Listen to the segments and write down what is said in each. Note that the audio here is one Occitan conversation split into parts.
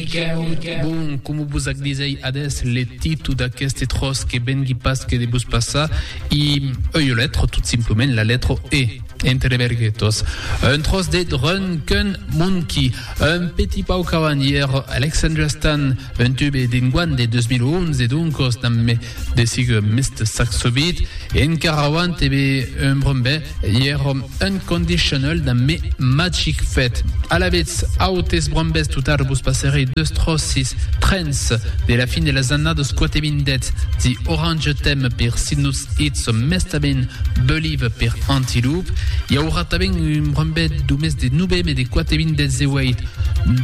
Miquèu, Bon, coma vos ac disèi adés, le titu d'aqueste tròç que vengui pas que de vos passar i ua letra, tot simplament la letra E, entre verguetas. Un tròç de drun qu'un monqui, un petit pau qu'avan ièr Alexandria Stan, un tube d'enguan de 2011, doncas damb De sig Mister Saxobeat e encara avant te be un brunbè ièr om unconditional da me magic fet. Alavetz autes brunbès totard vos passerei deus tròcis, trens, de la fin de las annadas quate vindètz The Orange Theme per Sidnutz Eats o mestament Believe per Antiloop. I aurà tanben un brunbè do mes de noveme de quate vindètz e ueit,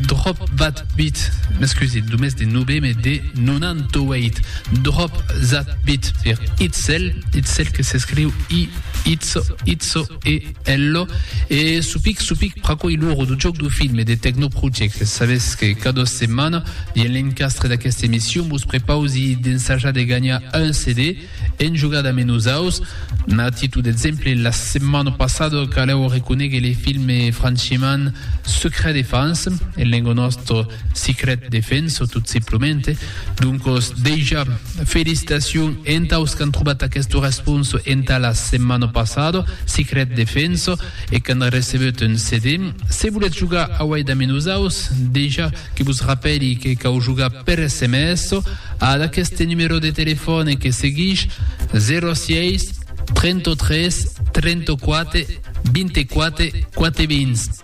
Drop That Beat, m'excusez, do mes de noveme de 98. Drop That Beat per Itzel, Itzel que s'escriu I, Itzo, Itzo e Ello, e Supic Supic pr'aquoi l'oro du joc du film e de Techno Project. Sabes que cada setmana, dins l'encastre d'aquesta emission, vos prepausi d'ensajar de ganhar un CD en jogada ame nosaus. A titu d'exemple, la setmana passada caleu reconéguer le film franchement Secret Defense, en lenga nostra Secret Defense, tot simplement, Doncos, dejà, felicitacion entaus qu'an trobat aquesta responsa entà la setmana passada, Secret Defense, e qu'an recebut un CD. Se volètz jogar auèi damb nosaus, dejà que vos rapèli que cau jogar per sms ad aqueste numèro de telefòne que seguish, 06 33 34 24 420.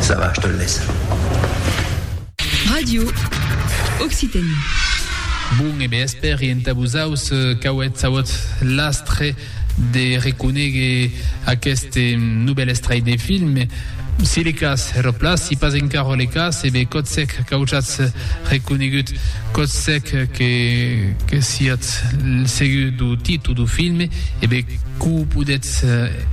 Ça va, je te le laisse. Radio Occitanie. Bon e bèsper e entà vosaus qu'auètz auut l'astre de reconéguer aqueste novèl estrai de film. Si le cas, ero plas, si pas encaro le cas, e be cotsèc qu'aujatz reconégut, cotsèc que siatz segur dou titu dou film, e be quo podètz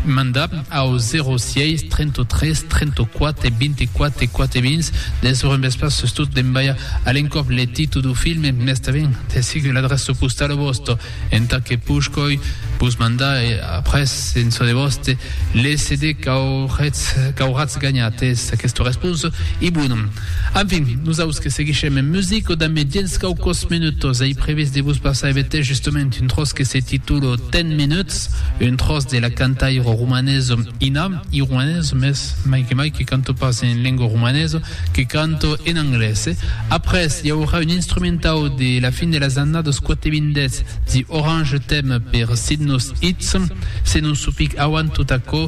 mandar. au 06 33 34 24 4 vins de sur un vespre sustot d'embalha a l'encòp le titu du film mès tanben de sic l'adrèça postala vòsta entà que pushcòi vos mandar e après en çò de vòste le CD qu'auretz ganhat es aquesta responsa e bon Enfin, nosaus que seguishem en music, o damb diens quauquòs menutòs ei previst de vos passar evetè justament un tròç que se titula Ten Minutes, un tròç de la cantaira romanesa Ina, iruanesa mès mai que mai, que canta pas en lengua romanesa, que canta en anglés. Après, i aurà un instrumentau de la fin de las annadas 80 The Orange Theme per Sydnos Eats. Se non supic auant tot aquò,